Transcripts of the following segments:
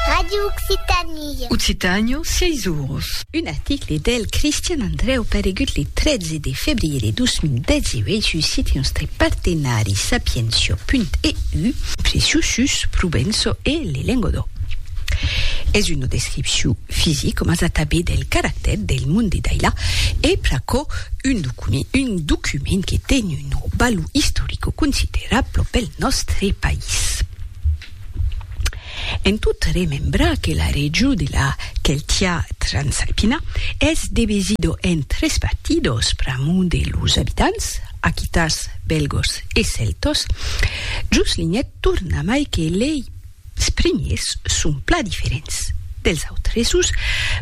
Radio Occitanie. Occitanio, siei zurros. Un article del Cristian Andreu paregut le 13 de febriere 2018 sus site nòstre partenari sapientia.eu, Preciu sus Provenço e le Lengodòu. Es una descripciu fisic coma sa tanben del caractèr del mond de Daila e pr'aquò un document que ten una valor istorico considerabla pel nòstre país. En tot remembrar que la region de la Celtia Transalpina es devesida en tres partidos pr'amor de los abitants, aquitans, bèlgos e cèltos, Juslinet torna mai que lei Es primiers son plan diferents dels autresus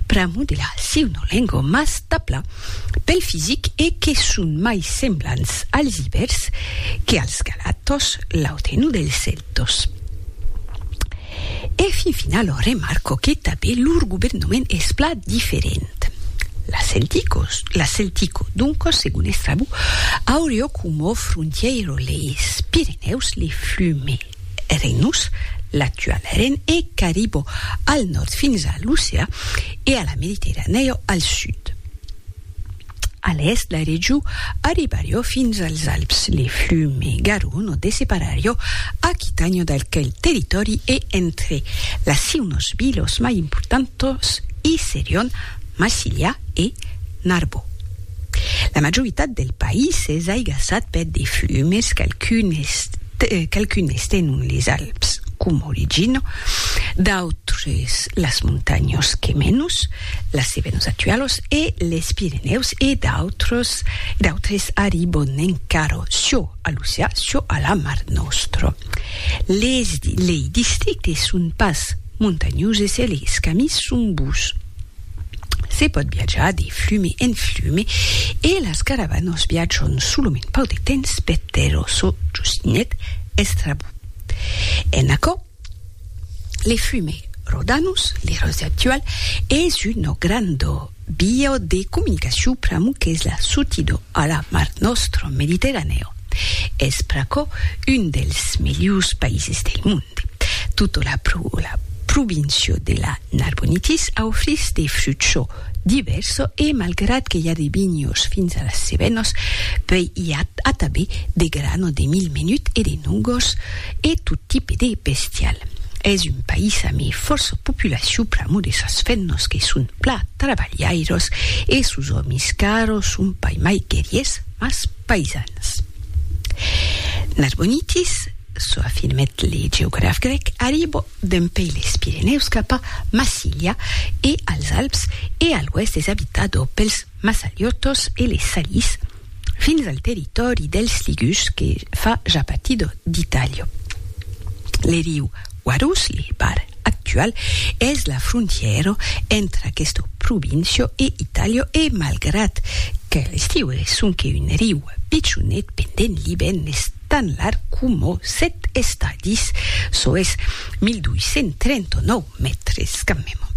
pr'amor de la siunolengo mas tabla pel fisic e que son mai semblants als ibers que als galatòs, l'autrenu dels celtòs. E fin final ò remarco que tabé lor governament es plan diferent. La celticos, la celtico, doncos segon Estrabó, aurió coma frontièiro leis Pirenèus, les Flumes. Rhinus, l'actual ren e caribò al nòrd fins a l'oceà e a la Mediterranèa al sud. A l'èst la region arribarió fins als Alps, le flume Garonne dessepararió Aquitània d'aquel territòri e entre las siunos vilos mai importantos i serion Massilia e Narbò. La majoritat del país es aigassat per de flumes, qualcunes tenon les Alps com origina, d'autres las montanhas Cemenus, las Cevenus actualas, e les Pirenèus e d'autres arribon encara çò a l'oceà, çò a la Mar Nòstra. Lei districtes son pas montanhoses e les camis son bus. Se pòt viatjar de flumi en flumi e las caravanas viatjan solament pauc de temps per tèrra çò justinhèt Estrabó. En aquò, le flumi Rodanus, l'Eròse actual, es una granda via de comunicacion pr'amor qu'es la sortida a la Mar Nòstra, Mediterranèa. Es pr'aquò un dels melhors païses del monde. Tota la província de la Narbonitis aufrís de frucho divèrso e malgrat que i a de vinhos fins a las Cevenos, puèi i a atabe de grano de mil menut e de nogos e tot tipe de bestial. Es un país ame fòrça populacion pr'amor de sas fennos que son plan trabalhairos e sos òmis qu'arò son pas mai guerriers mas païsans. Narbonitis, çò afirmèt le geograf grèc, arribo dempèi les Pirenèus cap a Massilia e als Alps e a l'oèst es abitado pels Massaliotos e les Salis fins al territòri dels Ligus que fa ja partido d'Italia. Le riu Guarulhos-li bar actual es la frontièra entre aquesta província e Itàlia e malgrat que l'estiu es sonque un riu pichonet pendent l'ivèrn es tan larg coma sèt estadis, çò es 1.239 mètres quand meme.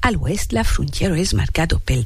A l'oèst la frontièra es marcada pel.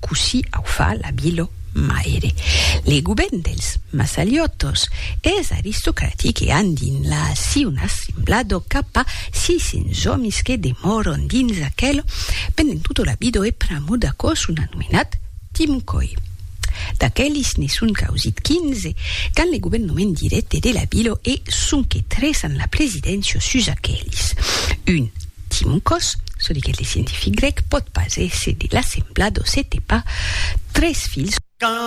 Cossí au fa la Bilo Maire. Le govèrn dels Massaliotos es aristocratic e an dins la si un assemblado cap a 600 òmis que demòron dins aquelo pendent tota la bido e pr'amor d'aquò son anomenat Timcoi. D'aquelis ne son causit 15 qu'an le governament dirècte de la Bilo e sonque tres an la presidéncia sus aquelis. Un. Timocòs, çò diguèt le scientific grèc, pòt pas èsser de la sembla d'Ocetepa, tres filhs.